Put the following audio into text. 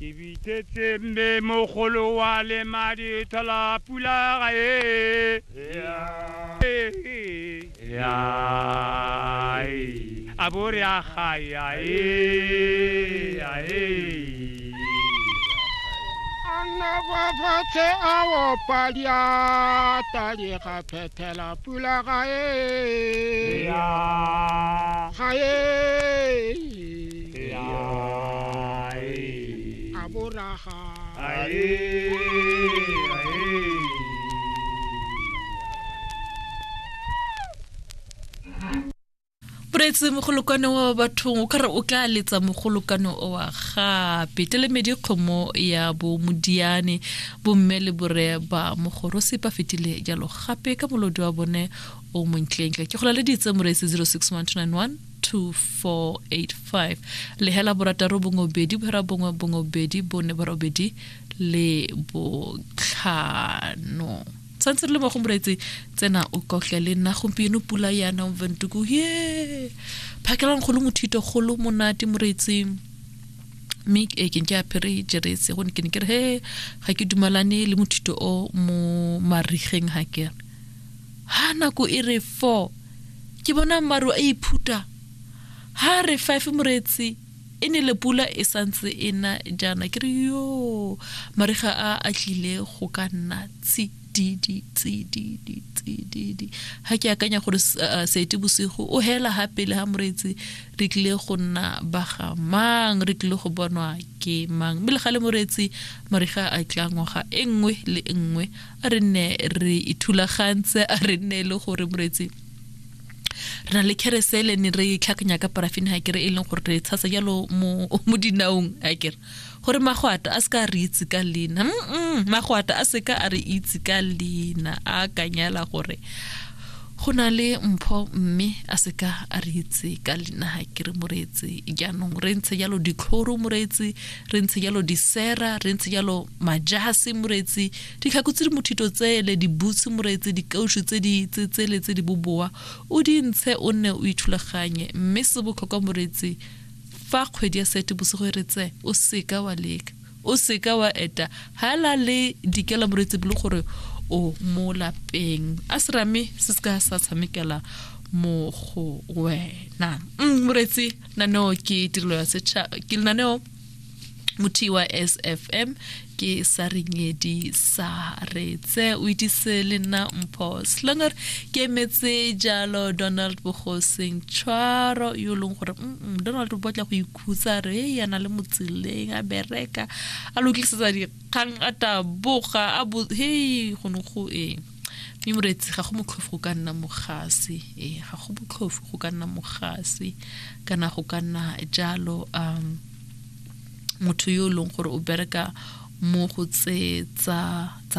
ke bitsetse mme mogolo wa le madi thola pula ga e a bo re a gaya e a e anna kwa fatshe a opa diata di ga phethela pula ga e ga e a boraga boreetse mogolokwane wa bathong o kare o tla letsa mogolokwane owa gape telemedi kgomo ya bo modiane bomme le bore ba mogoro sepa fetile jalo gape ka molodi wa bone o montleentle ke gola le ditse moreetse 061291 2485 lehela borataro bongwe bedi bohera bongwe bongwe bedi bone borobedi le botlhano santse re le mo go moreetse tsena o kotle le nna gompieno pula yana ventuku ye phakelang kgolo mothito kgolo monate moreetseng mme e ke ke apere jerese go ne ke ne ke re he ga ke dumalane le mothito o mo marigeng ga kere ha nako e re four ke bona maru a iphuta ha re five moretsi e ne le pula e santse e na jaana ke re yo mariga a a tlile go ka nna tsididi tsididi tsididi ha ke akanya gore uh, sete bosigo o hela ha pele ha moretsi re tlile go nna baga mang re tlile go bonwa ke mang mme le ga le moretsi mariga a tla ngwaga e nngwe le e nngwe a re nne re ithulagantse a re nne e le gore moretsi re na le kerese le ne re tlhakanya ka parafini ga kere e leng gore re tshasa jalo mo dinaong ga kere gore magwata a seka re itse ka leina magwata a seka a re itse ka leina a kanyala gore go na le mpho mme a seka a re itse ka leina ga kere moreetse jaanong re ntshe jalo ditlhoro moreetse re ntshe jalo disera re ntshe jalo majase moreetse Ditlhako tse di mothito tsele, dibutsu, moreetsi, dikaušu tse di tsetsele tse di boboa, o di ntshe o nne o ithulaganye. Mme se botlhokwa moreetsi, fa kgwedi ya Seetebosigo e retse, o seka wa leka, o seka wa eta hala le dikela moreetsi bolo gore o mo lapeng. A serame se se ka sa tshamekela mo go wena. Mm, moreetsi, naneo ke tirelo ya setšhaba, ke lenaneo motho wa sfm ke sa renyedi sa retse o itise le nna mpho slongor ke emetse jalo donald bogoseng tshwaro yo e leng gore donald o batla go ikhutsa re e yana le motseleng a bereka a lokisetsa dikgang a taboga a bo hei go ne go eng mme moreetsi ga go motlhofu go ka nna mogase ee ga go motlhofu go ka nna mogase kana go ka nna jalo um motho yo e leng gore o bereka mo go tse tsa tsa